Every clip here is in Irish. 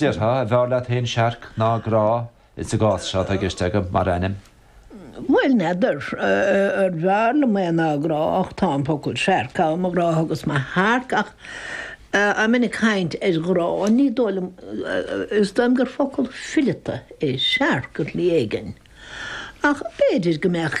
Déarfá, an bhfearr leat fhéin searc ná grá, is sa gcás seo, tá i gceist agam, mar ainm. Bhuel, n'fheadar. Ar bhfearr liom é ná grá, ach tá an focal searc ann, mo ghrá agus mo shearc, ach i mbun cainte ar ghrá, ní dóigh liom, is dóigh liom gur focal fileata é searc ar shlí éigin, ach b'fhéidir go mbeadh.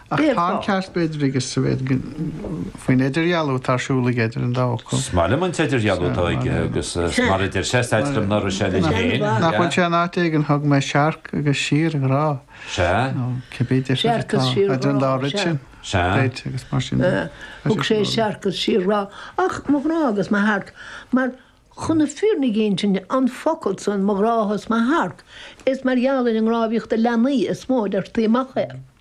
Ach tá an ceart b'fhéidir aige sa mhéid go bhfuil idirdhealú atá ar siúl aige idir an dá fhocal. 'S maith liom an t-idirdhealú atá aige agus mar a deir sé, is ait liom ná raibh sé linn féin. Nach bhfuil sé in áit éigin thug mé searc agus síorghrá. Sea. Nó cibé deifir atá. Searc agus síorghrá. Idir an dá rud sin. Sea. Beid, agus mar sin de. Thug sé searc agus síorghrá. Ach mo ghrá agus mo shearc. Mar chun na fírinne a insint an focal san, mo ghrá 's mo shearc, is mar gheall ar an ngrámhaireacht le leanaí is mó a deirtí amach é.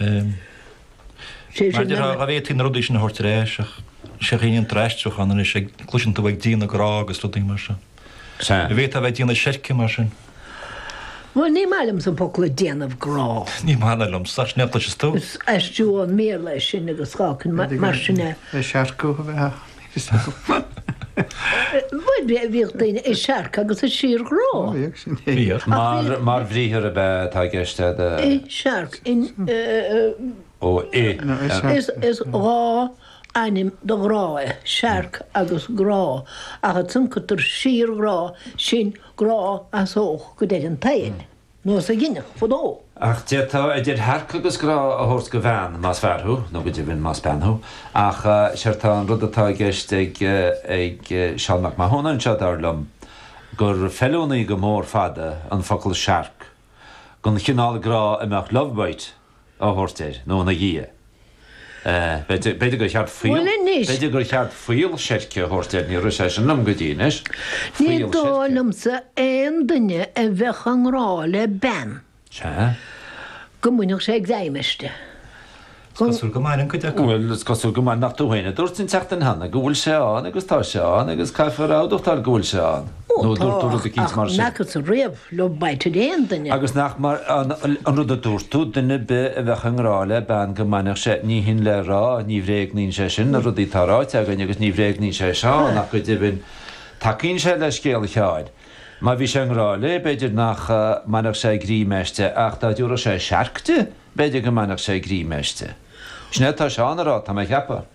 Mar de ghnáth fhéadfaidh na rudaí sin a thabhairt ar ais ach is é a shíníonn d'aistriúchán anois ag cloiseann tú ag déanamh grá agus rudaí mar sin. An bhféadfá bheith ag déanamh seirce mar sin? Bhuel ní maith liomsa an focal déanamh grá. Ní maith ná liomsa ach sin é a chloiseas tú. Is aistriú ón mBéarla é sin agus cáca mar sin é. Seirceadh a bheith Bhíodh daoine i searc agus i síorghrá. Bhíodh sin. Bhíodh. Mar bhriathar ab ea atá i gceist é do. I searc, in. Ó, i. Is dhá ainm do ghrá é, searc agus grá, ach is ionann síorghrá, sin grá as seo go deireadh an tsaoil. nós a dhéanadh fadó. Ach d'fhéadfá idir shearc agus grá a thabhairt do bhean más fear thú, nó go deimhin más bean thú. Ach séard tá an rud atá i gceist ag Seán Mac Mathúna anseo, dar liom, gur feiliúnaí go mór fada an focal searc, don chineál grá a mbeadh love bite a thabhairt air nó ina dhiaidh. B'fhéidir gur cheart fuíoll, b'fhéidir gur cheart fuíoll seirce a thabhairt air, níor rith sé sin liom go dtí anois, fuíoll seirce. Ní dóigh liomsa aon duine a bheadh i ngrá le bean go mbainfeadh sé greim aisti. Is cosúil go mbaineann cuid acu. Bhuel, is cosúil go mbaineann nach tú féin a dúirt an tseachtain cheana go bhfuil sé ann agus tá sé ann agus caithfear a admháil go bhfuil sé ann. Ó Nó tá, dúirt tú rud eicínt mar sin. mheasas-sa riamh go mbainfeadh aon duine. Agus nach mar an, an rud a dúirt tú, duine ar bith a bheadh i ngrá le bean go mbainfeadh sé, ní hin le rá, ní bhréagnaíonn sé sin na rudaí atá ráite againn agus ní bhréagnaíonn sé seo ach go deimhin, tacaíonn sé le scéal Sheáin. Má bhí sé i ngrá léi, b'fhéidir nach mbainfeadh sé greim aisti ach dá dtiúrfadh sé searc di, b'fhéidir go mbainfeadh sé greim aisti. Sin é atá Seán a rá, tá mé a cheapadh.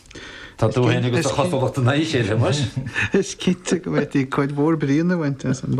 Tá tú fhéin agus do chosúlacht in éineacht anois. Is cinnte go bhféadfaí cuid mhór bríonna a bhaint as an.